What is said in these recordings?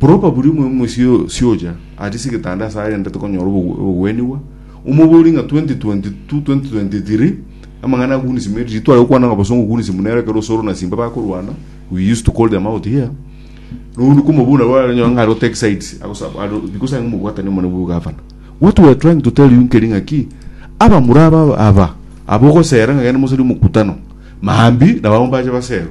Buru obaburie omoyo momoisia osiocha aria ase egetanda ase arende tokonyora obo- obogwenigwa, omoborie ng'a 2022, 2023, amang'ana akunisi me riria tware gokwana ng'a bosongo okunisi buna ere ekero osoro na simba bakorwana, we used to call them out here, na obundi komoboria nabo aranyora ng'a are o take sides, agosa- are o- because are ng'omobwatani omonene bwa ogavana. What we are trying to tell you nkeri ng'aki, abamura aba aba, abwo ogosera ng'a genda mosarie omokutano, maambia nabo abwo mbache baserwe.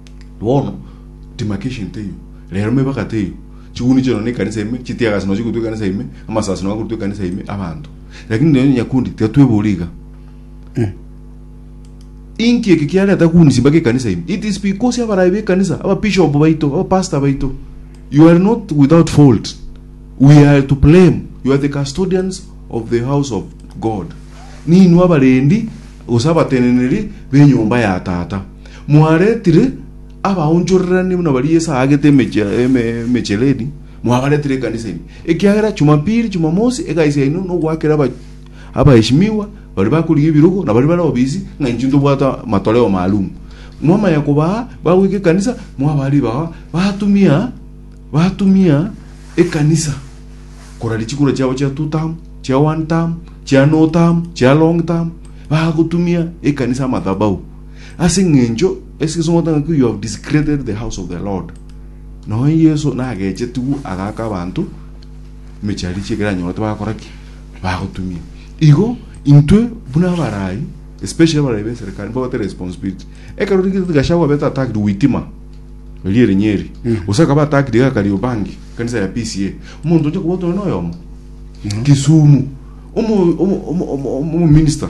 Bono timaka egento eyio, rero mebagate eyio, chiguni chiao nonya ekanisa ime, chitiagasi nonya chikorutwa ekanisa ime, amasasi nonya akorutwa ekanisa ime, abanto. Lakini nonya nyakundi, tiga twebori iga. Inki eke kiareta kuni simbaka ekanisa ime? It is because abarayi b'ekanisa, ababishop baito, abapastor baito, you are not without fault. We are to blame. You are the custodians of the house of God. Ninwe abarendi, gose abateneneri b'enyomba ya tata. Mwaretire abaonchorerania buna baria Yeso aagete emechie- eme- emechereri, mwabaretire ekanisa ime, ekiagera Chumapili, Chumamosi egasi yaino nogoakera aba- abaesimigwa baria bakorigia ebirogo na baria bare obisi ng'a inchuo ntobwate amatoleo maalumu. Mwamanya kobaa bagoika ekanisa, mwabaa ribaga, batumia batumia ekanisa korari chikura chiabo chia two term, chia one term, chia no term, chia long term, bagotumia ekanisa amadhabahu. Ase engencho eseseng'o tang'aku you have desecrated the house of the Lord. Noe Yeso nagechetigwe agaka abanto emechie ya richiera eranyore tibagakora ki? Bagotumia. Igo intwe buna abarai especially abarai b'eserekari nibo bate responsibility. Ekero rigete Gachagua abete attacked Witima erio ere Nyeri. Gose akaba attacked iga Kariobangi ekanisa ya PCA. Omonto oche kobotwa noyomo. Kisumu. Omo omo omo omo omo minister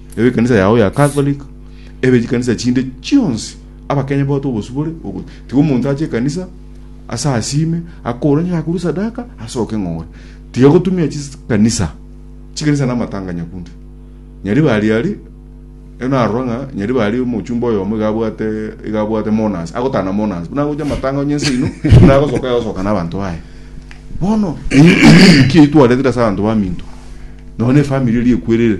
Ebekanisa yao ya Catholic, ebe chikanisa chinde chionsi, abakenya bagote obosibore, ogo- tiga omonto ache ekanisa ase asime akore onye akorwe sadaka asoke ng'ore. Tiga gotumia chikanisa, chikanisa na amatanga nyakunde. Nyari bari ari eno arora ng'a nyari bari omochumba oyomo iga abwate iga abwate monas agotana monas buna agocha amatanga onye ense ino buna agosoka agosoka n'abanto baye bono ki twaretire ase abanto baminto nonya efamiri eria ekwerire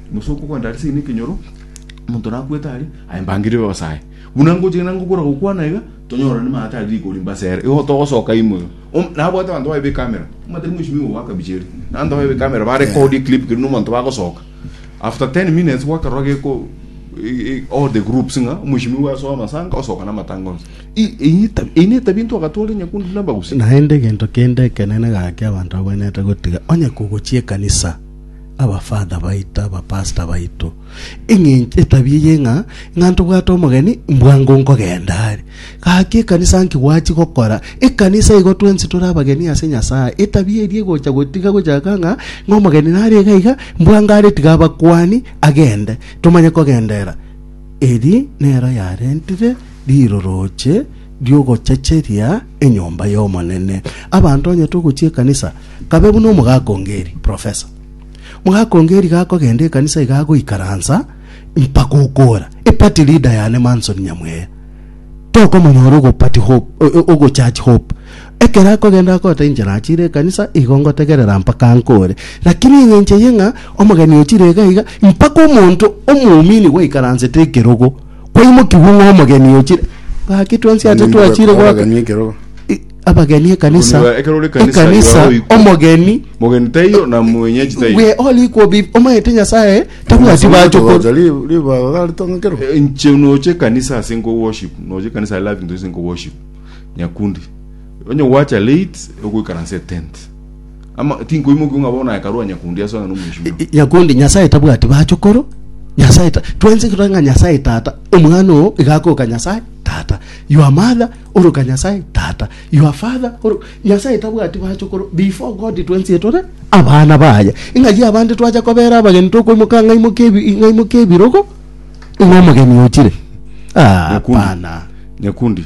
Gose okogwenta aria seino ekenyoro, omonto nakwete aria, aye mbangire yose aye. Buna ngochi ng'ina ngokora gokwana iga, tonyorane maya tari rigori mbase ere. Igo togosoka imo iga. Om- Nabwate abanto baye b'ekamera. Omatari mweshimi obo bwakabiche ere. Abanto baye b'ekamera barekodia eclip keru nomonto bagosoka. After 10 minutes gwakarora geko e- e- all the groups ng'a omweshimi obo asoe amasanga, osoka namatanga onsi. I- eyio eta- eyio netabia intwe agatwara enyakundi na embagusi. Naende egento kende ekenene gaki abanto babwenerete gotiga onye kogochia ekanisa. abafather baito, abapastor baito, eng'encho etabia eye ng'a, ng'a ntobwate omogeni, mbwango nkogenda are. Gaki ekanisa nki gwachi gokora? Ekanisa igo twensi tore abageni ase Nyasae. Etabia eria egocha gotiga gochaka ng'a, ng'a omogeni nare iga iga, mbwango are tiga abakuani, agende. Tomanye kogenderera. Eri nero yarentire riroroche ri'ogochacheria. enyomba y'Omonene. Abanto onye togochia ekanisa, kabe buna omogaka ongeri, professor. Mogaka ongeri gakogenda ekanisa iga agoikaransa mpaka okora. Epati leader yane Manson Nyamweya. Tokomonyora ogopati hope, o- o- ogochurch hope. Ekero akogenda akota inche nachire ekanisa, igo ngotegerera mpaka nkore. Lakini eng'enche yeng'a omogeni ochire iga iga, mpaka omonto omoumini gwaikaransete ekerogo, Kwaimokigwa ng'a omogeni ochire. Gaki twensi ache Ninde twachire okoba goaka abageni ekero I- abageni ekanisa Koniba ekero ore ekanisa ekanisa yao oikwe. omogeni Mogeni taiyo na mwenyeji taiyo. we all equal be omanyete nyasaye tabwati bacho ko- Gocha ri- ribaga gari tong'ekero. Eh, Nche noche kanisa ase nko worship, noche kanisa I love into ase nko worship. Nyakundi. Onye gwacha late ogoikaranse tent. Ama tinkoimokiwa ng'a bono Hekalu onye kundi ase onye nomwesibwa. I- nyakundi nyasae tabwati bachokoro nyasae ta- twensi tore ng'a nyasae tata omwana oo iga akoka nyasae tata your mother oroka nyasae tata your father oro nyasae tabwati bachokoro before god twensi etore abana baye ing'achi abande twacha kobera abageni tokoimoka ng'aimoke ebi- ng'aimoke ebirogo ing'omogeni ochire ah Nyakundi. hapana Nyakundi.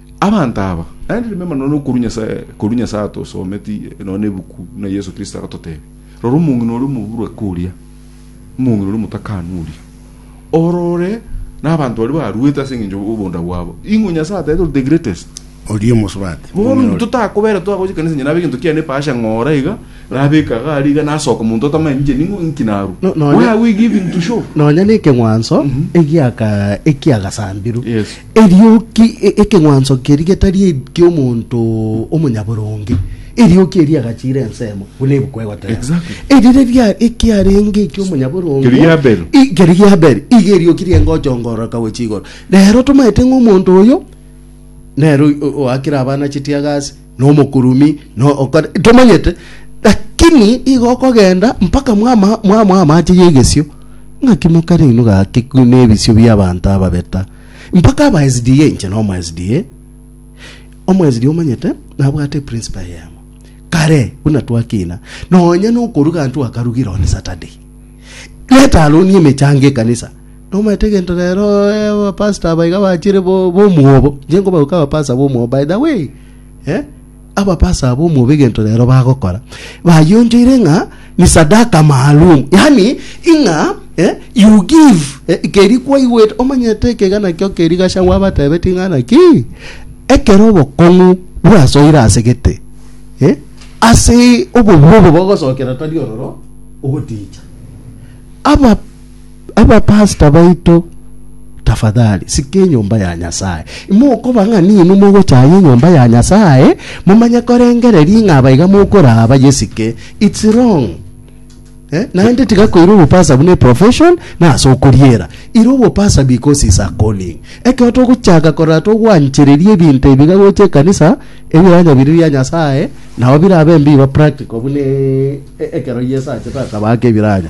Abanto aba naende nimbaima nonya nokorwa Nyasae, korwa Nyasae atosometi nonya nebuku buna Yeso Kristo agatotebia, Rora omong'ina oria omoburweke oria, omong'ina oria omotakanu oria, orore nabanto baria baruete ase engencho y'obonda bwabo, ing'o Nyasae ataete ore the greatest? Oria omosubati. Bono omong'ina oria. totakobera twagochia ekanisa nyene abe gento kiane epasha ng'ora iga nabeka iga aria iga nasoka omonto otamanya ninche ning'o inki narwa No- nonya- where are we giving to show nonya nekeng'wanso egiaka ekiagasambirwe Yes. Eriogi ekeng'wanso keria getari eki'omonto omonyaboronge, eriogi eria riagachiire ensemo, buna ebuku egoteeba. Eri riria ekiarenge eki'omonyaboronge Keria gia Abeli. I- keria gia Abeli, iga eriogi riengochongoroka gochia igoro. Rero tomaete ng'a omonto oyo nere o- oakire abana chitiagasi, Nomokurumi, na okore tomanyete, lakini igo okogenda mpaka mwama mwamoa amache y'egesio, ng'aki mokare inwe gaki nebisio bi'abanto ababeta, mpaka aba SDA, inche nomo SDA, omo SDA omanyete nabwate principle eyemo, kare buna twakina, nonya nokoruga ntwakarugira on Saturday, reta aronie emechango ekanisa, Nomanyete gento rero abapastor aba iga bachire b'omwobo, inche nkobauka abapastor b'omwobo by the way eh? abapastor aba b'omwobo egento rero bagokora bayonchoire ng'a ni sadaka maalum yani ing'a eh? you give eh? keri kwaigwete omanyete ekega nakio keri gachang'wa abatebetie ng'a naki ekero obokong'u bwasoire ase gete eh? ase obobua obo bogosokera tari ororo ogoticha aba Abapastor baito, tafadhali sika enyomba ya Nyasae. Imokoba ng'a ninwe mogochaya enyomba ya Nyasae, momanye korengereria ng'a aba iga mokoraa bayesike. It's wrong. Eh? Naende tiga koira obopasa buna eprofession na ase okoriera. Ira obopasa because is a calling. Ekero togochaka korora togwanchereria ebinto ebi iga gocha ekanisa, ebiranya biri bia Nyasae, nao birabe mbiba practical buna e- e- ekero Yeso achete akaba ake ebiranya.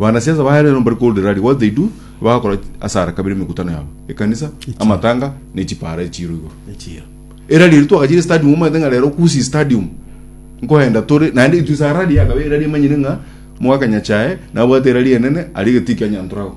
Banasiasa baye rero mbari korwa Derari what they do bagakora asara kabere emekutano yabo ekanisa amatanga ne chipara echiro igoro Echiro. erari eri twagachire stadium omanyete ng'a rero kusi stadium nkoenda tore naende itwe sarari yakabe erari emanyire ng'a mwaka nyachae nabwate erari enene ari getikia nyantorago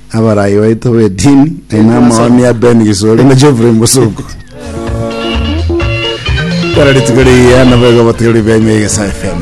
Abaraai baito b'edini, nainwe amaoni a Ben Gisori na Geoffrey Mbusuku. Kera rituko riya nabo igo abatoiroria b'enywe ya Egesae FM.